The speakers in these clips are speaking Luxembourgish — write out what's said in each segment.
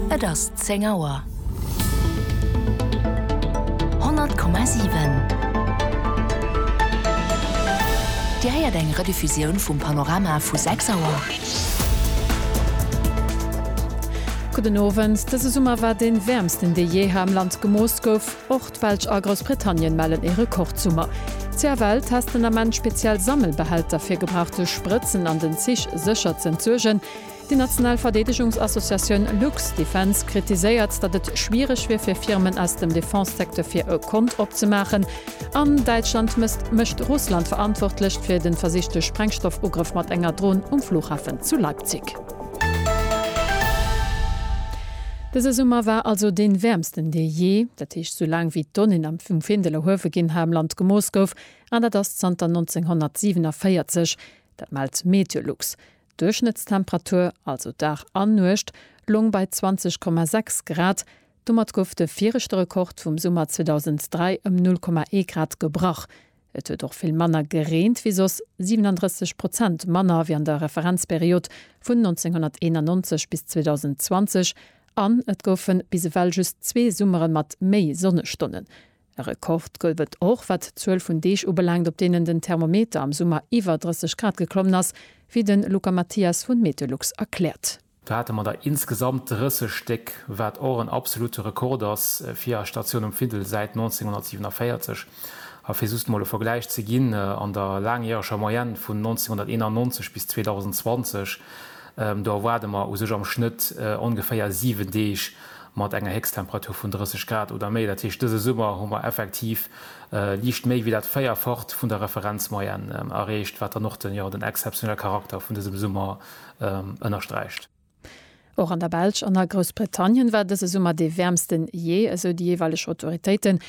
Et ass zéng Auer. 100,7 Dir héiert eng Rediffusioun vum Panorama vu 6 Auer. Gudden Owend, Dëse Summer war dee wäermsten, dee jee hei am Land gemooss gouf. Och d'Belsch a Groussbritannien mellen ee Rekordsummer. CFL testen ament speziell Sammelbehälter, fir gebrauchte Sprëtzen an den Zich sécher z'entsuergen. Déi national Verdeedegungsassociatioun Lux Defence kritiséiert, datt et schwiereg wier fir Firmen aus dem Defense-Secteur fir e Kont opzemaachen. An Däitschland mécht Russland verantwortlech fir de versichte Sprengstoffugrëff mat enger Dron um Flughafen zu Leipzig. Dëse Summer war also dee wäermsten dee jee, dat heescht sou laang wéi d'Donnéen am vum Findel erhuewe ginn ha am Land gemooss gouf, an dat ass zanter 1947. Dat mellt MeteoLux. D'Duerchschnëttstemperatur, also Dag an Nuecht, loung bei 20,6 Grad. Domat gouf de viregte Rekord vum Summer 2003 ëm 0,1 Grad gebrach. Et huet och vill manner gereent wéi soss, 37 Prozent manner wéi an der Referenzperiod vun 1991 bis 2020, an et goufe bis ewell just zwee Summere mat méi Sonnestonnen. E Rekord gouf et och, wat d'Zuel vun Deeg ubelaangt, op deenen den Thermometer am Summer iwwer 30 Grad geklommen ass, wéi de Luca Mathias vun Meteolux erkläert. Do hate mer der insgesamt 30 Stéck, wat och en absolute Rekord ass fir eis Statioun um Findel säit 1947. A fir just mol e Vergläich ze ginn, an der laangjäreger Moyenne vun 1991 bis 2020, do erwaarde mer u sech am Schnëtt ongeféier 7 Deeg, mat enger Héchsttemperatur vun 30 Grad oder méi. Dat heescht, dëse Summer hu mer effektiv liicht méi wéi dat Véierfacht vun der Referenzmoyenne erreecht, wat dann och den exzeptionelle Charakter vun dësem Summer ënnersträicht. Och an der Belsch an a Groussbritannien war dëse Summer dee wäermsten jee, esou déi jeeweileg Autoritéiten.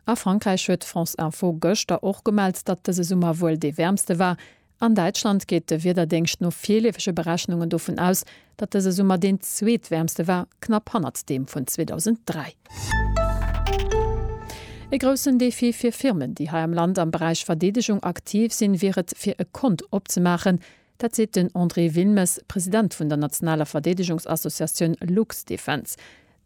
A Frankräich huet France Info gëschter och gemellt, datt dëse Summer wuel dee wäermste war, An Däitschland geet de Wiederdéngscht no virleefege Berechnungen dovun aus, datt dëse Summer deen zweetwäermste war, knapp hannert deem vun 2003. E groussen Defi fir Firmen, déi hei am Land am Beräich Verdeedegung aktiv sinn, wier et, fir e Kont opzemaachen. Dat seet den André Wilmes, President vun der nationaler Verdeedegungsassociatioun Luxdefense.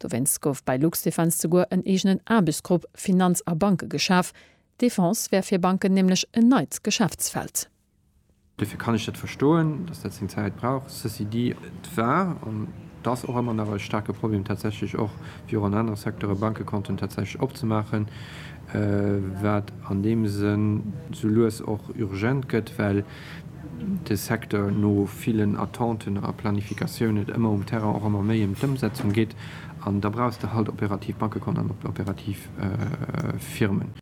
Dowéinst gouf bei Luxdefense souguer en eegenen Aarbechtsgrupp Finanz a Banke geschaf, Defense wär fir Banken nämlech en neit Geschäftsfeld. Duerfir kann ech dat verstoen, dass dat seng Zäit brauch. Ceci dit, et war an et ass och ëmmer nach e staarke Problem, tatsächlech och wéi och an anere Secteure Bankekonten tatsächlech opzemaachen, wat an deem Sënn sou lues och urgent gëtt, well, de Secteur no villen Attenten a Planifikatioun et ëmmer um Terrain och ëmmer méi ëm d'Ëmsetzung geet an da brauchs de halt operativ Bankekont an operativ Firmen.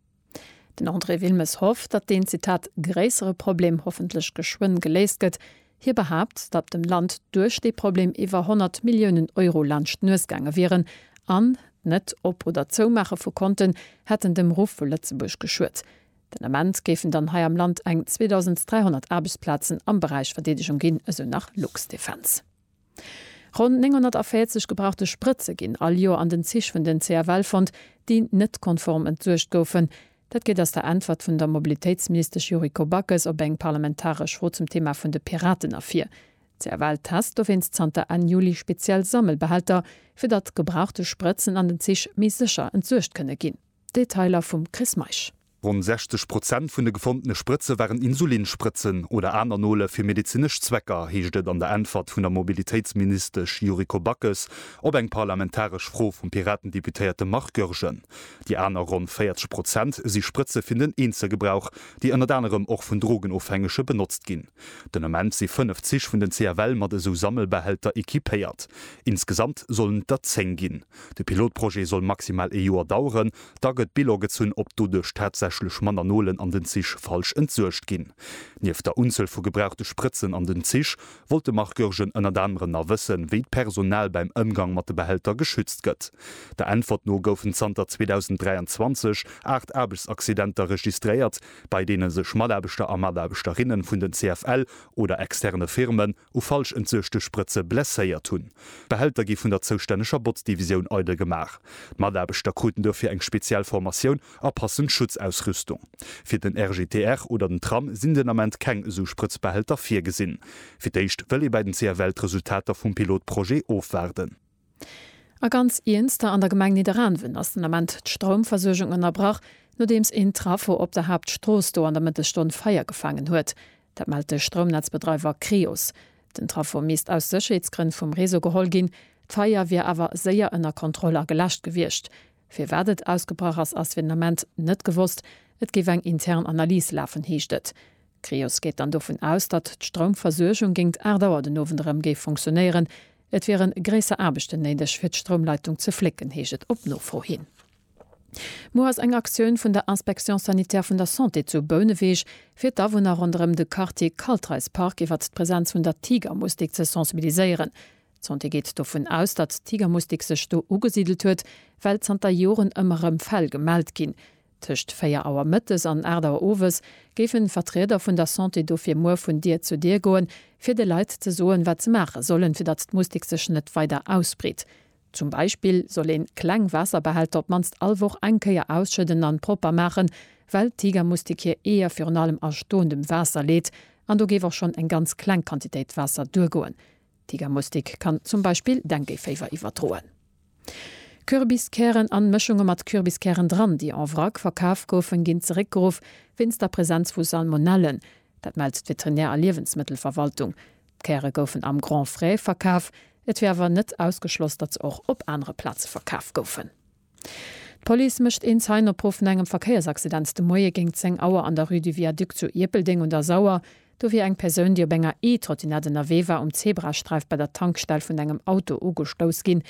Den André Wilmes hofft, datt deen, Zitat, gréissere Problem hoffentlech geschwënn geléist gëtt. Hie behaapt, datt dem Land duerch dee Problem iwwer 100 Milliounen Euro laanscht d'Nues gaange wieren an d'Net-Op oder Zoumaache vu Konten hätten dem Ruff vu Lëtzebuerg geschuet. Den Ament géifen dann hei am Land eng 2.300 Aarbechtsplazen am Beräich Verdeedegung ginn, esou nach Luxdefense. Ronn 940 gebrauchte Sprëtze ginn all Joer an den Zich vun den CFL fonnt, déi net konform entsuergt goufen. Dat geet aus der Äntwert vun der Mobilitéitsministesch Yuriko Backes op eng parlamentaresch Fro zum Thema vun de Piraten ervir. D'CFL test dowéinst zanter Enn Juli speziell Sammelbehälter, fir datt gebrauchte Sprëtzen an den Zich méi sécher entsuergt kënne ginn. Detailer vum Chris Meisch. Ronn 60 Prozent vun de gefondene Sprëtze waren Insulinsprëtzen oder aner Nole fir medezinesch Zwecker, heescht et an der Äntwert vun der Mobilitéitsministesch Yuriko Backes op eng parlamentaresch Fro vum Piraten-Deputéierte Marc Goergen. Déi aner ronn 40 Prozent si Sprëtze fir den Eenzelgebrauch, déi ënnert anerem och vun Drogenofhängege benotzt ginn. Den Ament si fënnef Zich vun den CFL mat esou Sammelbehälter equipéiert. Insgesamt sollen et der zéng ginn. De Pilotprojet soll maximal ee Joer daueren, da gëtt Bilan gezunn, ob doduerch tatsächlech manner Nolen an den Zich falsch entsuergt ginn. Nieft der Unzuel vu gebrauchte Sprëtzen an den Zich, wollt de Marc Goergen ënnert anerem nach wëssen, wéi d'Personal bäim Ëmgang mat de Behälter geschützt gëtt. Der Äntwert no goufen zanter 2023 aacht Aarbechtsaccidenter registréiert, bei deene sech Mataarbechter a Mataarbechterinnen vun den CFL oder externe Firmen, u falsch entsuechte Sprëtze blesséiert hunn. D'Behälter gi vun der zoustänneger Botzdivisioun eidel gemaach. D'Mataarbechter kruten dofir eng speziell Formatioun a passend Schutzausrüstung. Fir den RGTR oder den Tram sinn den Ament keng esou Sprëtzbehälter virgesinn. Fir d'éischt wëll ee bei den CFL d'Resultater vum Pilotprojet ofwaarden. A ganz Iernster, an der Gemeng Nidderaanwen ass den Ament d'Stroumversuergung ënnerbrach, nodeems een Trafo op der Haaptstrooss do an der Mëttesstonn Feier gefaangen huet. Dat mellt de Stroumnetzbedreiwer Creos. Den Trafo misst aus Sécherheetsgrënn vum Réseau geholl ginn. D'Feier wier awer séier ënner Kontroll a geläscht gewiescht. Firwat et ausgebrach ass, ass fir den Ament net gewosst. Et géif eng intern Analys lafen, heescht et. Creos geet dann dovun aus, datt d'Stroumversuergung géingt 8 Auer den Owend erëm géif funktionéieren. Et wiere gréisser Aarbechten néideg, fir d'Stroumleitung ze flécken, heescht et op Nofro hin. Muer ass eng Aktioun vun der Inspection sanitaire vun der Santé zu Bouneweg, fir d'Awunner ronderëm de Quartier Kaltreispark iwwert d'Presenz vun der Tigermustik ze sensibiliséieren. D'Santé geet dovun aus, datt d'Tigermustik sech do ugesidelt huet, well zanter Joren ëmmer erëm Fäll gemellt ginn, Tëscht 4 Auer mëttes an 8 Auer owes géifen Vertrieder vun der Santé dofir muer vun Dier zu Dier goen, fir de Leit ze soen, wat se maache sollen, fir datt d'Mustik sech net weider ausbreet. Zum Beispill soll een kleng Waasserbehälter op d'mannst all Woch eng Kéier ausschëdden an propper maachen, well d'Tigermustik hir Eeër virun allem a stoendem Waasser leet an do géif och schonn eng ganz kleng Quantitéit Waasser duergoen. D'Tigermustik kann zum Beispill Dengueféiwer iwwerdroen. Kürbiskären an Mëschunge mat Kürbiskären dran, déi en vrac verkaf goufen, ginn zeréckgeruff wéinst der Präsenz vu Salmonellen. Dat mellt d'Veterinär a Liewensmëttelverwaltung. D'Käre goufen am Grand Frais verkaf, et wier awer net ausgeschloss, datt se och op anere Plaze verkaf goufen. D'Police mécht een Zeien-Opruff no engem Verkéiersaccident de Moie géint 10 Auer an der Rue du Viaduc zu Ierpeldeng un der Sauer. Do wier eng Persoun, déi op enger E-Trottinett ënnerwee war, um Zebrasträif bei der Tankstell vun engem Auto ugestouss ginn.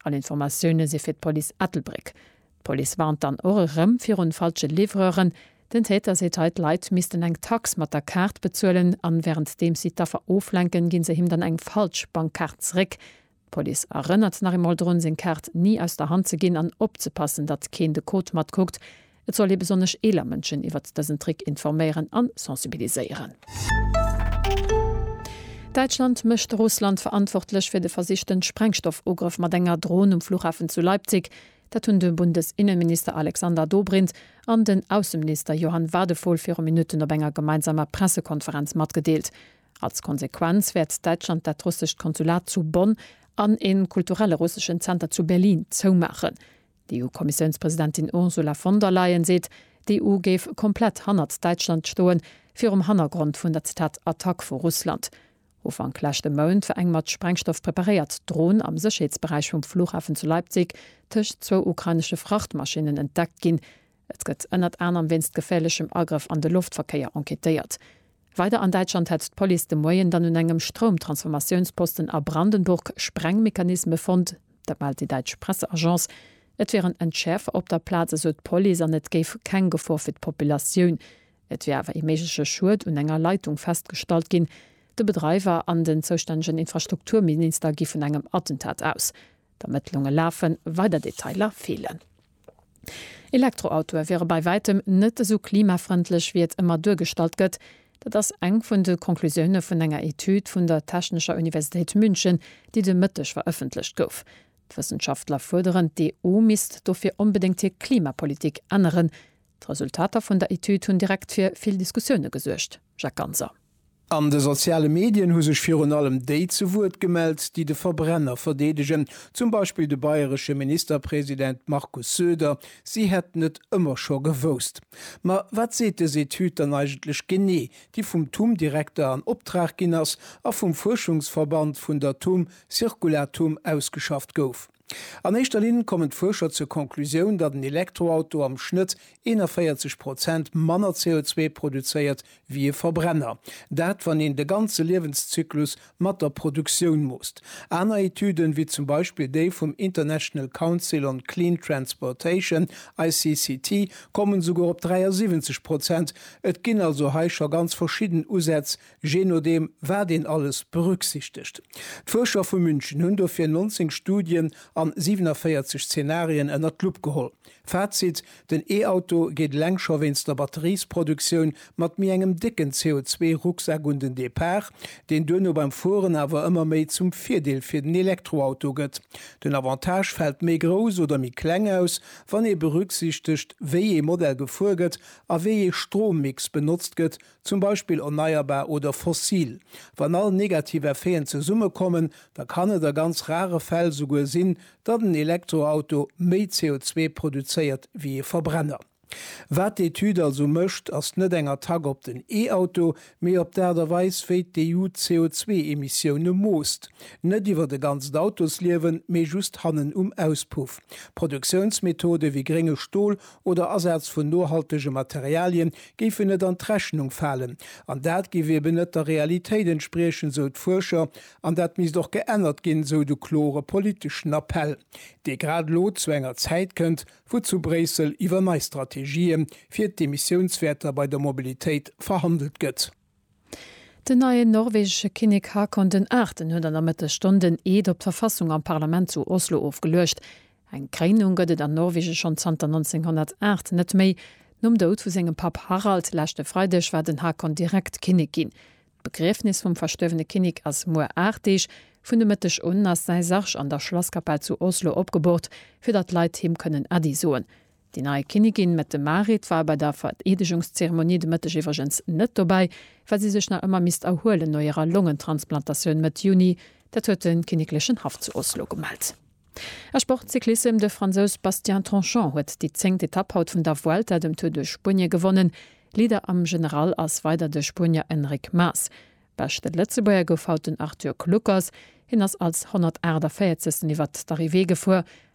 All Informatioune si fir d'Police Ettelbréck. D'Police warnt dann och erëm virun falsche Livreuren. Den Täter seet hei, d'Leit missten eng Tax mat der Kaart bezuelen an wärenddeems si d'Affer oflenken, ginn se him dann eng falsch Bankkaart zeréck. D'Police erënnert nach eemol drun, seng Kaart ni aus der Hand ze ginn an opzepassen, datt keen de Code matkuckt. Et soll ee besonnesch eeler Mënschen iwwert dësen Trick informéieren an sensibiliséieren. Däitschland mécht Russland verantwortlech fir de versichten Sprengstoffugrëff mat enger Dron um Flughafen zu Leipzig. Dat hunn de Bundesinneminister Alexander Dobrindt an den Ausseminister Johann Wadephol viru Minutten op enger gemeinsamer Pressekonferenz matgedeelt. Als Konsequenz wäert Däitschland dat russescht Konsulat zu Bonn an ee kulturelle russeschen Zenter zu Berlin zoumaachen. D'EU-Kommissiounspresidentin Ursula von der Leyen seet, d'EU géif komplett hannert Däitschland stoen, virum Hannergrond vun der Zitat Attack vu Russland. Ufank leschte Mount war eng mat Sprengstoff preparéiert Dron am Sécherheetsberäich vum Flughafen zu Leipzig tëscht zwou ukrainesche Frachtmaschinnen entdeckt ginn. Et gëtt ënnert anerem wéinst geféierlechem Agrëff an de Loftverkéier enquêtéiert. Weider an Däitschland hetzt d'Police de Moien dann un engem Stroumtransformatiounsposten a Brandenburg Sprengmechanisme fonnt. Dat mellt déi däitsch Presseagence. Et wieren Entschäerfer op der Plaz, esou d'Police an et géif keng Gefor fir d'Populatioun. Et wier awer ee méigleche Schued un enger Leitung festgestallt ginn. De Bedreiwer an den zoustännegen Infrastrukturminister gi vun engem Attentat aus. D'Ermëttlunge lafen, weider Detailer feelen. Elektroautoe wiere bei wäitem net esou klimafrëndlech, wéi et ëmmer duergestallt gëtt. Dat ass eng vun de Conclusioune vun enger Etüd vun der Technescher Universitéit München, déi de Mëtteg verëffentlecht gouf. D'Wëssenschaftler fuerderen, d'EU misst dofir onbedéngt hir Klimapolitik änneren. D'Resultater vun der Etüd hunn direkt fir vill Diskussioune gesuergt, Jacques Ganser. An de soziale Medien hu sech virun allem déi zu Wuert gemellt, déi de Verbrenner verdeedegen, zum Beispill de bayresche Ministerpresident Markus Söder, si hätten et ëmmer scho gewousst. Ma wat seet dës Etüd dann eigentlech genee, déi vum TUM-Direkter an Optrag ginn ass a vum Fuerschungsverband vun der TUM Circulatum ausgeschafft gouf? An éischter Linn kommen d'Fuerscher zur Konklusioun, datt en Elektroauto am Schnëtt 41 Prozent manner CO2 produzéiert wéi e Verbrenner. Dat, wann een de ganze Liewenszyklus mat der Produktioun moosst. Aner Etüden, wéi zum Beispill déi vum International Council on Clean Transportation, ICCT, kommen esouguer op 73 Prozent. Et ginn also hei scho ganz verschidden Usätz, je nodeem wat een alles berücksichtegt. D'Fuerscher vu München hunn dofir 19 Studien an 47 Zenarien ënnert d'Lupp geholl. Fazit, Den E-Auto geet eleng scho wéinst der Batteriesproduktioun mat méi engem décken CO2-Rucksak un den Depart, deen duerno beim Fueren awer ëmmer méi zum Virdeel fir den Elektroauto gëtt. Den Avantage fält méi grouss oder méi kleng aus, wann ee berücksichtegt, wéi ee Modell gefuer gëtt a wéi ee Strommix benotzt gëtt, zum Beispill erneierbar oder fossil. Wann all negativ Effeten zesummekommen, da kann et a ganz rare Fäll souguer sinn, datt en Elektroauto méi CO2 produzéiert wéi ee Verbrenner. Wat d'Etüd also mécht, ass net eng Attack op den E-Auto, mee op d'Aart a Weis, wéi d'EU d'CO2-Emissioune moosst. Net iwwert e ganzt Autosliewen, mee just hannen um Auspuff. Produktiounsmethode wéi grénge Stol oder Asaz vun nohaltege Materialien géifen net an d'Rechnung falen. An dat géif eben net der Realitéit entspriechen, sou d'Fuerscher, an dat misst och geännert ginn, sou de klore politeschen Appell, dee grad elo zu enger Zäit kënnt, wou zu Bréissel iwwer nei Strategië fir d'Emissiounswäerter bei der Mobilitéit verhandelt gëtt. Den neien norwegesche Kinnek Haakon den Aachten huet an der Mëttesstonn den Eed op d'Verfassung am Parlament zu Oslo ofgeluecht. Eng Kréinung gëtt et an Norwegen schonn zanter 1908 net méi. Nom Doud vu sengem Papp Harald leschte Freideg war den Haakon direkt Kinnek ginn. D'Begriefnis vum verstuerwene Kinnek ass muer 8 Deeg. Vun de Mëtteg un ass säi Sarg an der Schlasskapell zu Oslo opgebort, fir datt d'Leit him kënnen Äddi soen. Déi nei Kinnigin Mette Marit war bei der Vereedegungszeremonie de Mëtteg iwwregens net dobäi, well si sech nach ëmmer misst erhuelen no hirer Longentransplantatioun Mëtt Juni. Dat huet de kinneklechen Haff zu Oslo gemellt. A Sportcyclissem, De Fransous Bastien Tanchon huet déi zéngt Etapp haut vun der Vuelta, dem Tour de Spuenie, gewonnen. Leader am General ass weider de Spuenier Enric Mas. Beschte Lëtzebuerger gouf haut den Arthur Kluckers. Hien ass als 148. iwwert d'Arrivée gefuer